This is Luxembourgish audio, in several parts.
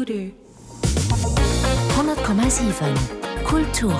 100,7 Kulturen.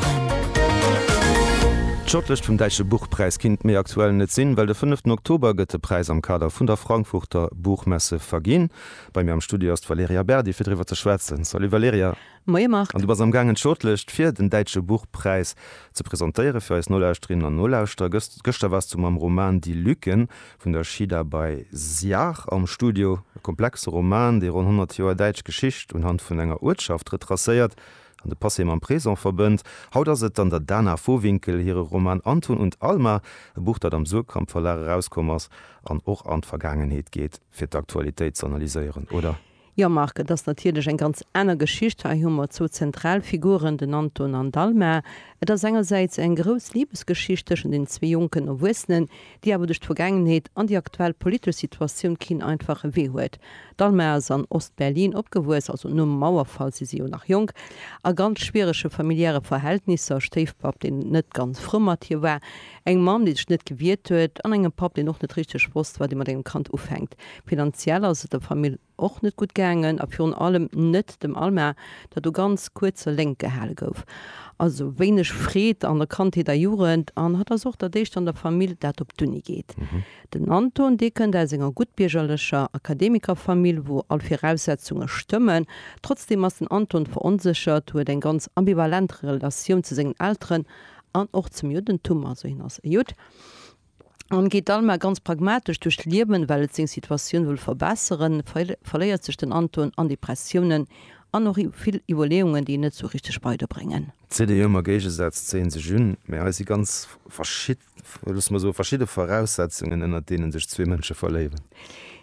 D'Shortlëscht vum Däitsche Buchpräis kinnt méi aktuell net sinn, well de fënneften Oktober gëtt de Präis am Kader vun der Frankfurter Buchmesse verginn. Bei mir am Studio ass d'Valerija Berdi fir driwwer ze schwätzen. Salut Valerija. Moie Marc. An du bass am gaangen d'Shortlëscht fir den Däitsche Buchpräis ze presentéiere fir eis Nolauschterinnen an Nolauschterer. Gëschter waars du mam Roman Die Lücken vun der Shida bei Siach am Studio, e komplexe Roman, dee ronn 100 Joer däitsch Geschicht unhand vun enger Uertschaft retracéiert an de Passé mam Présent verbënnt. Haut ass et an der Dana Vohwinkel hire Roman Anton und Alma, e Buch, dat am Suhrkamp Verlag erauskomm ass an och an d'Vergaangenheet geet, fir d'Aktualitéit z'analyséieren, oder? Jo, Marc, et ass natierlech eng ganz aner Geschicht. Hei hu mer zwou zentral Figuren, den Anton an d'Alma. Et ass engersäits eng grouss Libesgeschicht tëschent den zwee jonken Erwuessenen, déi awer duerch d'Vergaangenheet an déi aktuell politesch Situatioun keen einfache Wee huet. D'Alma ass an Ost-Berlin opgewuess, also nom Mauerfall, si si jo nach jonk, a ganz schwierege familiäre Verhältnisser, Stéifpapp, deen net ganz frou mat hir war, Engem Mann, dee sech net gewiert huet, an engem Papp, deen och net richteg wosst, wat ee mat engem Kand ufänkt. Finanziell ass et der Famill och net gutt gaangen a virun allem net dem Alma, dat u ganz kuerzer Léngt gehale gouf. Also wéineg Freed an der Kandheet a Jugend an hatt ass och dat éischt an der Famill, dat op d'Uni geet. Den Anton, dee kënnt aus enger guttbiergerlecher Akademikerfamill, wou all Viraussetzunge stëmmen. Trotzdeem ass den Anton veronséchert, huet eng ganz ambivalent Relatioun zu sengen Elteren an och zum Juddentum, also hien ass e Judd, an geet dann mar ganz pragmatesch duerch d'Liewen, well et seng Situatioun wëll verbesseren, verléiert sech den Anton an Depressiounen an och vill Iwwerleeungen, déi en net sou richteg weider bréngen. D'Zidde Joer mam Géigesaz zéien sech un, mee hei si ganz verschid, loosse mer soen, verschidde Voraussetzungen, ënnert deenen sech zwee Mënsche verléieren.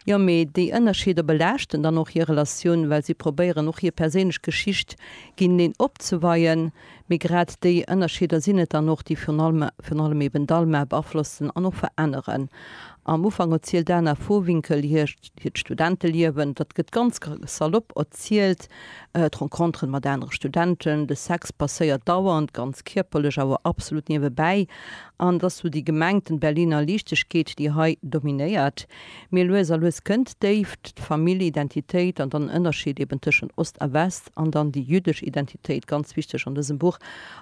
Jo, mee déi Ënnerscheeder belaaschten dann och hir Relatioun, well si probéieren och hir perséinlech Geschicht géineneen opzeweien. Mee grad déi Ënnerscheeder sinn et dann och, déi virun allem virun allem eben d'ALMA beaflossen an och veränneren. Am Ufank erzielt d'Ana Vohwinkel hir hiert Studenteliewen. Dat gëtt ganz salopp erzielt, d'Renconteren mat anere Studenten, de Sex passéiert dauernd, ganz kierperlech, awer absolut niewebäi. An et ass sou déi gemengten Berliner Liichtegkeet, déi hei dominéiert. Mee lues a lues kënnt d'Déift, d'Famillidentitéit an dann en Ënnerscheed eben tëschent Ost a West an dann déi jüddesch Identitéit, ganz wichteg an dësem Buch.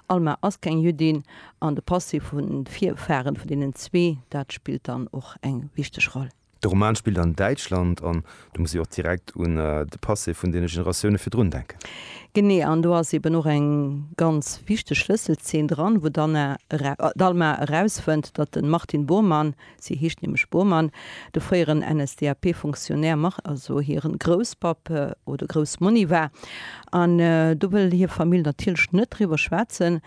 Alma ass keng Jüddin an de Passé vu Virfaren vun deenen zwee, dat spillt dann och eng wichteg Roll. De Roman spillt an Däitschland an do muss ech och direkt un de Passé vun deene Generatioune virdrun denken. Genee, an do ass eben och eng ganz wichteg Schlësselzeen dran, wou d'Anna, d'Alma erausfënnt, datt de Martin Bormann, Si heescht nämlech Bormann. De fréieren NSDAP-Fonctionnaire Marc, also hiren Grousspapp oder Groussmonni war. An do wëll hir Famill natierlech net driwwer schwätzen.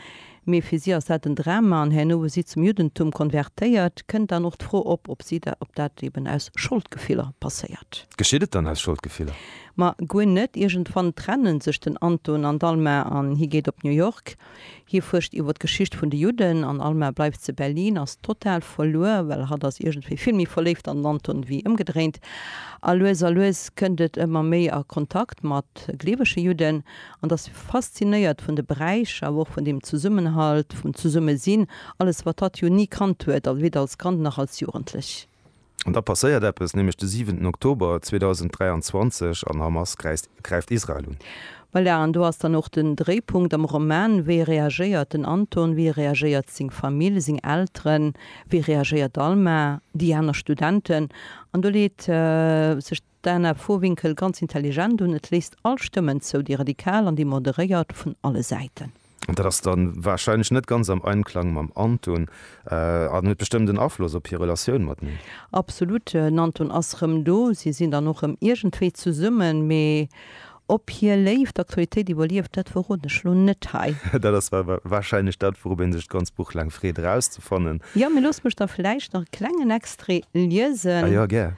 Mee fir si ass dat en Drama. An herno hu si zum Juddentum konvertéiert. Kënnt dann och d'Fro op, ob si da, ob dat eben aus Scholdgefiller passéiert. Geschitt et dann aus Scholdgefiller? Ma guer net. Iergendwann trenne sech den Anton an d'Alma an hie geet op New York. Hie fuerscht iwwer d'Geschicht vun de Judden an Alma bleift ze Berlin, ass total verluer, well hatt ass iergendwéi vill méi verléift an den Anton wéi ëmgedréint. A lues a lues kënnt et ëmmer méi a Kontakt mat gleewege Judden an ass faszinéiert vun de Bräich, awer och vun dem Zesummenhalt, vum Zesummesinn, alles wat hatt jo ni kannt huet, weder als Kand nach als Jugendlech. An da passéiert eppes, nämlech de siwenten Oktober 2023 an Hamas gräift Israel un. Voilà, an do ass dann och den Dréipunkt am Roman, wéi reagéiert den Anton, wéi reagéiert seng Famill, seng Elteren, wéi reagéiert d'Alma, déi aner Studenten? An do leet sech. D'Ana Vohwinkel, Ganz intelligent un, et léisst all Stëmmen zou, déi radikal an déi moderéiert, vun alle Säiten. Dat ass da warscheinlech net ganz am Einklang mam Anton an huet bestëmmt en Afloss op hir Relatioun mat mir. Absolut, den Anton ass rëm do, si sinn dann och rëm iergendwéi zesummen, mee ob hir Léift d'Aktualitéit iwwerlieft, dat verroden ech elo net hei. Dat ass warscheinlech dat, wourop ee sech d'ganz Buch laang freet erauszefannen. Jo, mee loosst mech da vläicht nach e klengen Extrait liesen. A jo, gär.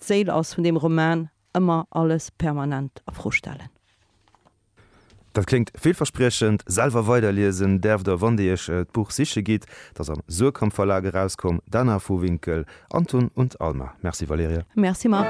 D'Séil ass vun deem Roman ëmmer alles permanent a Fro stellen. Dat kléngt villverspriechend. Selwer weiderliesen däerf der, wann Dir Iech d'Buch siche gitt. Dat ass am Suhrkamp Verlag erauskomm. D'Anna Vohwinkel, Anton und Alma. Merci Valerija. Merci Marc.